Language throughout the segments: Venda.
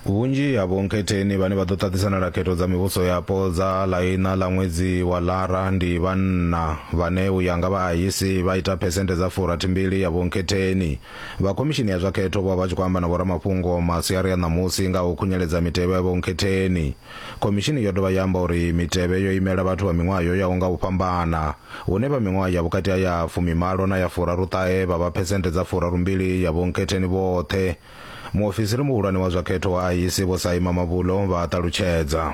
vhunzhi ha vhonkhetheni vhane vha ḓo ṱaṱisana na khetho dza mivhuso yapo dza ḽa iṋa ḽa ṅwedzi wa lara ndi vhanna vhane u ya nga vhaayisi vha ita phesenthe dza furathimbili ya vhonkhetheni vha khomishini ya zwa khetho vho vha tshi khou amba na vhoramafhungo masiari a ṋamusi nga u khunyeledza mitevhe ya vhonkhetheni Khomishini yo dovha ya amba uri mitevhe yo imela vhathu vha miṅwaha yo yaho nga u fhambana, hune vha miṅwaha ya vhukati ha ya fumimalo na ya furaruṱahe vha vha phesenthe dza furarumbili ya vhonkhetheni vhoṱhe. Muofisiri muhulwane wa zwa khetho wa IEC Vho Saima Mavulo vha a ṱalutshedza.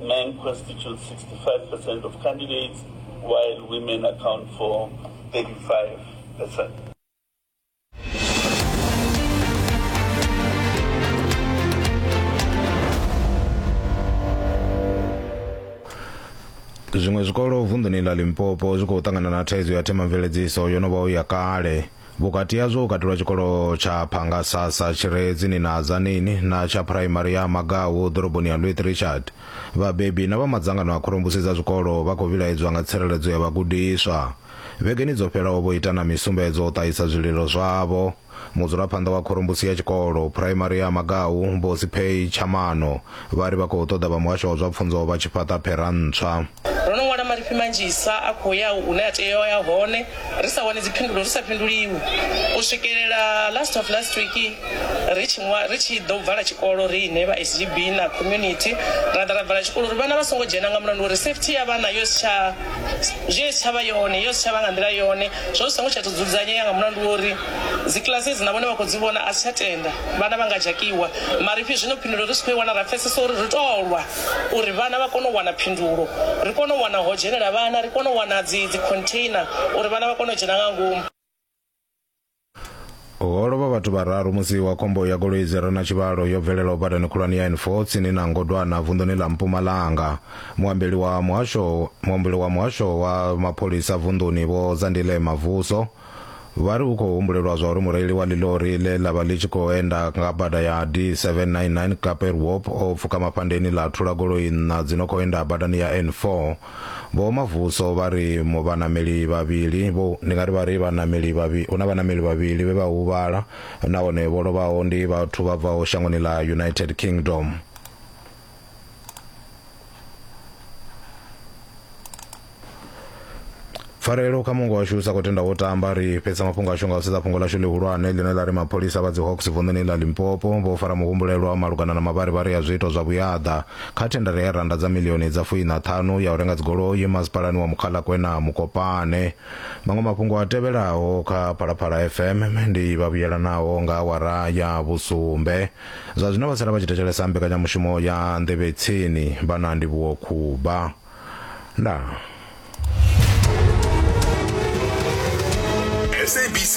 Men constitute 65% of candidates, while women account for 35%. zwiṅwe zwikolo vunḓuni ḽa limpopo zwi khou ṱangana na thaidzo ya themamveledziso yo no vhaho ya kale Vhukati hazwo hu katelwa tshikolo tsha Phangasasa tshi re tsini na Adzaneni na tsha phuraimari ya Magawu ḓoroboni ya Louis Richard. Vhabebi na vha madzangano a khorombusi dza zwikolo vha khou vhilaedzwa nga tsireledzo ya vhagudiswa. Vhegeni dzo fhelaho vho ita na misumbedzo u ṱahisa zwililo zwavho. Mudzulaphanḓa wa khorombusi ya tshikolo phuraimari ya Magawu, Vho Sipheyi Tshamano, Vha ri vha khou ṱoḓa vha muhasho wa zwa pfunzo vha tshi fhaṱa phera ntswa. Ro no ṅwala marifhi manzhisa a khou ya hune a tea u ya hone ri sa wani dziphindulo, ri sa fhinduliwi u swikelela last of last week ri tshi ṅwa, ri tshi ḓo vala tshikolo riṋe vha SGB na community ra ḓa ra vala tshikolo uri vhana vha songo dzhena nga mulandu wa uri safety ya vhana yo si tsha zwi si tsha vha yone, yo si tsha vha nga nḓila yone, zwo zwi songo tsha tou dzudzanyea nga mulandu wa uri. Dzikiḽasi hedzi na vhone vha khou dzi vhona, a si tsha tenda vhana vha nga dzhakiwa. Marifhi zwino phindulo ri si khou i wana, ra pfesesa uri ri tou lwa uri vhana vha kone u wana phindulo, ri kone u wana ho dzhenela vhana, ri kone u wana dzi dzi container uri vhana vha kone u dzhena nga ngomu. Ho lovha vhathu vhararu musi wa khombo ya goloi dzi re na tshivhalo yo bvelelaho badani khulwane ya N4 tsini na Ngodwana vunḓuni ḽa Mpumalanga. Muambeli wa muhasho muambeli wa muhasho wa mapholisa vunḓuni Vho Zandile Mavuso Vha ri hu khou humbulelwa zwa uri mureili wa ḽilori ḽe ḽa vha ḽi tshi khou enda nga bada ya D799 Kaper Wop o pfuka maphandeni ḽa thula goloi nṋa dzi no khou enda badani ya N4. Vho Mavuso vha ri mu vhaṋameli vhavhili vho. Ndi nga ri vha ri vhaṋameli vhavhi, hu na vhaṋameli vhavhili vhe vha huvhala nahone vho lovhaho ndi vhathu vha bvaho shangoni ḽa United Kingdom. pfarelo kha mungo washu sa khou tenda wo tamba ri fhedza mafhungo ashu nga u sedza fhungo lashu ḽihulwane ḽine ḽa ri mapholisa vha dzi hawks vunḓuni ḽa limpopo vho fara muhumbulelwa malugana na mavharivhari a zwiito zwa vhuyaḓa kha thendara ya randa dza milioni dza fuina ṱhanu ya u renga dzigoloi masipalani wa mukhalakwe na mukopane maṅwe mafhungo a tevhelaho kha phalaphala fm ndi vhavhuyelanaho nga awara ya vhusumbe Zwa zwino vha sala vha tshi thetshelesa mbekanyamushumo ya Nḓevhe Tsini. Vha na ndivhuwo Khuba. Ndaa. SABC